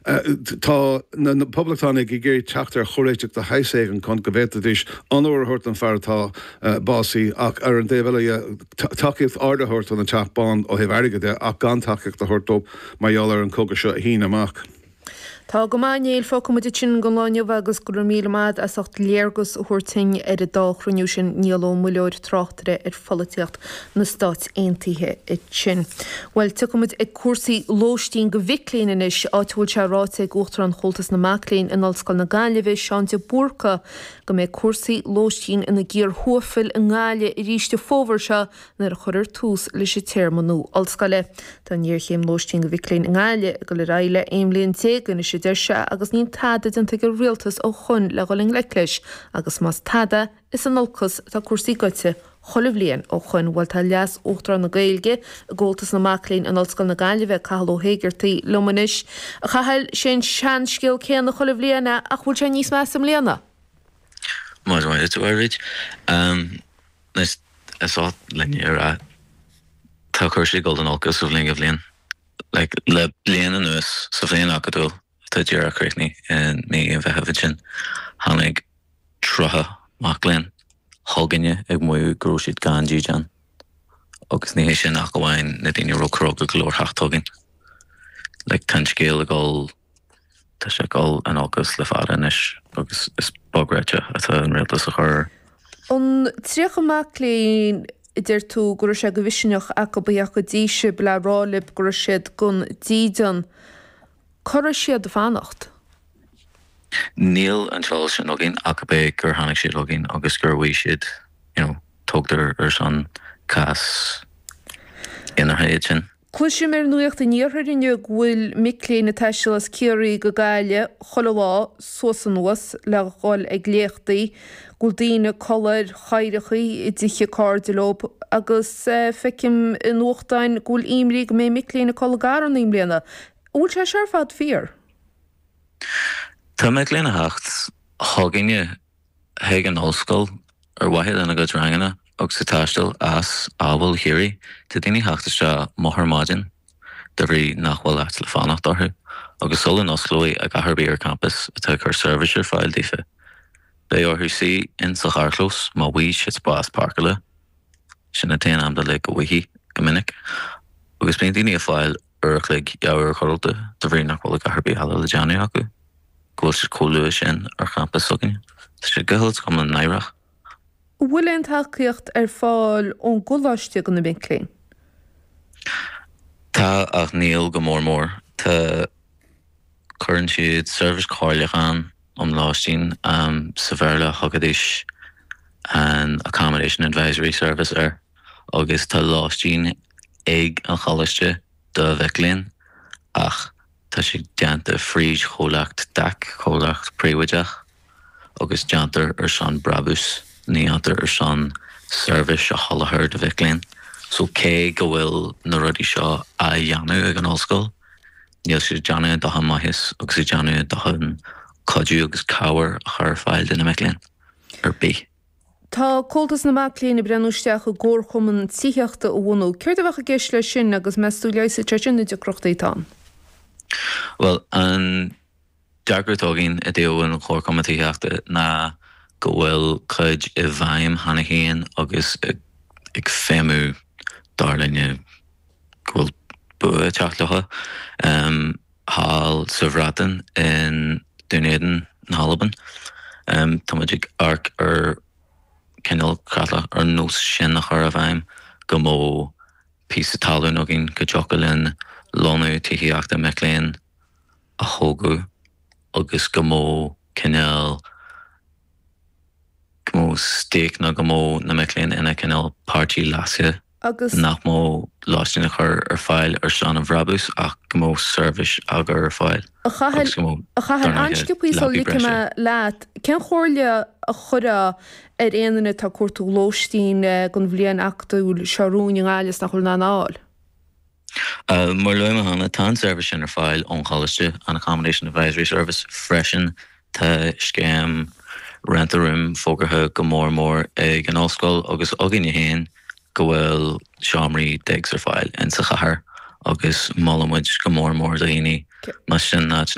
Tá na Poblachtánaigh ag iarraidh teacht ar chomhréiteach de shaghas éigin chun go bhféadfaidís onóir a thabhairt don fear atá básaithe ach ar an dtaobh eile dhe, tacaíocht ard a thabhairt don Teach Bán ó thaobh airgid de ach gan tacaíocht a thabhairt dóibh mar gheall ar an cogadh seo a shíneadh amach. Tá go maith, a Néill, fágfaidh muid sin don lá inniu agus go raibh míle maith agat as ucht léargas a thabhairt duinn ar an dá chruinniú sin Niall Ó Muilleoir, tráchtaire ar. pholaitíocht na Stáit Aontaithe sin. Bhuel, tiocfaidh muid ag cúrsaí lóistín go mhic léinn anois, áit a bhfuil sé ráite ag Uachtarán Chomhaltas na Mac Léinn in Ollscoil na Gaillimhe, Seán de Búrca, go mbeidh cúrsaí lóistín ina gcíor thuaifil i nGaillimh arís an fómhar seo nuair a chuirfear tús leis an téarma nua ollscoile. Tá an ghéarchéim lóistín go mhic léinn i nGaillimh ag dul ar aghaidh le 11 bliain anois a deir sé agus níl tada déanta ag an Rialtas ó shoin le dhul i ngleic leis agus más tada, Is in olcas atá cúrsaí goite chuile bhliain ó shoin. Bhuel, tá Leas Uachtarán na Gaeilge i gComhaltas na Mac Léinn in Ollscoil na Gaillimhe, Cathal Ó hÉigeartaigh, liom anois. A Chathail, 'sé an seanscéal céanna chuile bhliain a, ach bhfuil sé níos measa i mbliana? Más maith leat a Mháirín, is oth linn a rá, tá cúrsaí ag dul in olcas ó bhliain go bliain. Le bliain anuas, sa bhliain acadúil, atá díreach críochnaithe i mí an Mheithimh ansin. Tháinig tríocha mac léinn chugainne ag maíomh go raibh siad gan dídean. Agus ní hé sin ach amháin na daoine a raibh cróga go leor theacht chugainn. Like, tá an scéal ag dul, tá sé ag dul in olcas le fada anois agus is beag réitigh atá an Rialtas a chur. An tríocha mac léinn a deir tú go raibh sé de mhisneach acu a theacht go dtí sib le rá lib go raibh siad gan dídean. Cá raibh siad ag fanacht? Níl an t-eolas sin againn ach amháin gur tháinig siad chugainn agus gur mhaígh siad, you know, tógtar ar son cás imeartha iad sin. Cloisim ar nuacht an iarthair inniu go bhfuil mic léinn ag taisteal as Ciarraí go Gaillimh chuile lá suas anuas le dhul ag léachtaí. bhfuil daoine ag codladh ar chathaoireachaí i dtithe cairde leob agus feicim i nuachtáin go bhfuil imní go mbeidh mic léinn ag codladh i gcarranna i mbliana. An bhfuil sé seo ar fad fíor? Tá mic léinn a theacht chugainne chuig an Ollscoil ar mhaithe lena gcuid ranganna agus ag taisteal as amhail Chiarraí. Tá daoine theacht isteach moch ar maidin. de bhrí nach bhfuil áit le fanacht acu, agus sula n-osclóidh achan rud ar campas atá ag cur seirbhís ar fáil daofa, beidh orthu suí ins sa charrchlós go bhfaighidh siad spás páirceála. Sin an t-aon am den lá go bhfaighidh, go minic, agus bíonn daoine ag fáil uair a chloig, dhá uair codlata, de bhrí nach bhfuil a dhath ar bith eile le déanamh acu, go bhfuil siad comh luath sin ar champas s'againne. Tá sé go huile is go hiomlán náireach. An bhfuil aon tacaíocht ar fáil ón gColáiste do na mic léinn? Tá ach níl go mór mór. Tá, cuireann siad Seirbhís Comhairleacháin um Lóistín, sa Bhéarla thugaidís an Accommodation Advisory Service air, agus tá lóistín ag an Choláiste do mhic léinn ach, Tá sé déanta fríd chomhlacht DAC, comhlacht príobháideach, agus déantar ar son brabús, ní dhéantar ar son seirbhís a sholáthar do mhic léinn. So cé go bhfuil na rudaí seo á dhéanamh ag an Ollscoil, níl siad ag déanamh a ndóthain maitheas agus ag déanamh a ndóthain cuidiú agus cabhair a chur ar fáil do na mic léinn ar bith. Tá Comhaltas na Mac Léinn ag breathnú isteach i gcomharchumann tithíochta a bhunú. Céard a bheadh i gceist leis sin agus meas tú leigheasfaidh sé sin na deacrachtaí atá ann? Bhuel, an dearcadh atá againn i dtaobh an chomharchumann tithíochta ná go bhfuil cuid i bhfeidhm cheana féin agus ag feidhmiú dar linne go bhfuil bua ag teacht leo. thall sa Bhreatain i nDún Éideann na hAlban. Tá muid ag amharc ar cineál creatlach ar nós sin a chur i bhfeidhm go mbeadh píosa talún againn go dtiocfadh linn lonnú tithíochta mic léinn a thógadh agus go mbeadh cineál, go mbeadh stake nó go mbeadh na mic léinn ina cineál páirtí leasaithe. agus nach mbeadh lóistín á chur ar fáil ar son an bhrabús ach go mbeadh seirbhís á cur ar fáil sa chathair. An-sciobthaí sula ligfidh mé leat, cén chomhairle a chuirfeá ar aon duine atá ag cuartú lóistín don bhliain acadúil seo romhainn i nGaillimh 's nach bhfuil in ann a fháil? Mar a luaigh mé cheana, tá an tseirbhís sin ar fáil ón Choláiste, an Accommodation Advisory Service, freisin. Tá scéim Rent a Room fógartha go mór mór ag an Ollscoil agus againne féin go bhfuil seomraí digs ar fáil insa chathair agus molaimid go mór mór do dhaoine más sin an áit ina bhfuil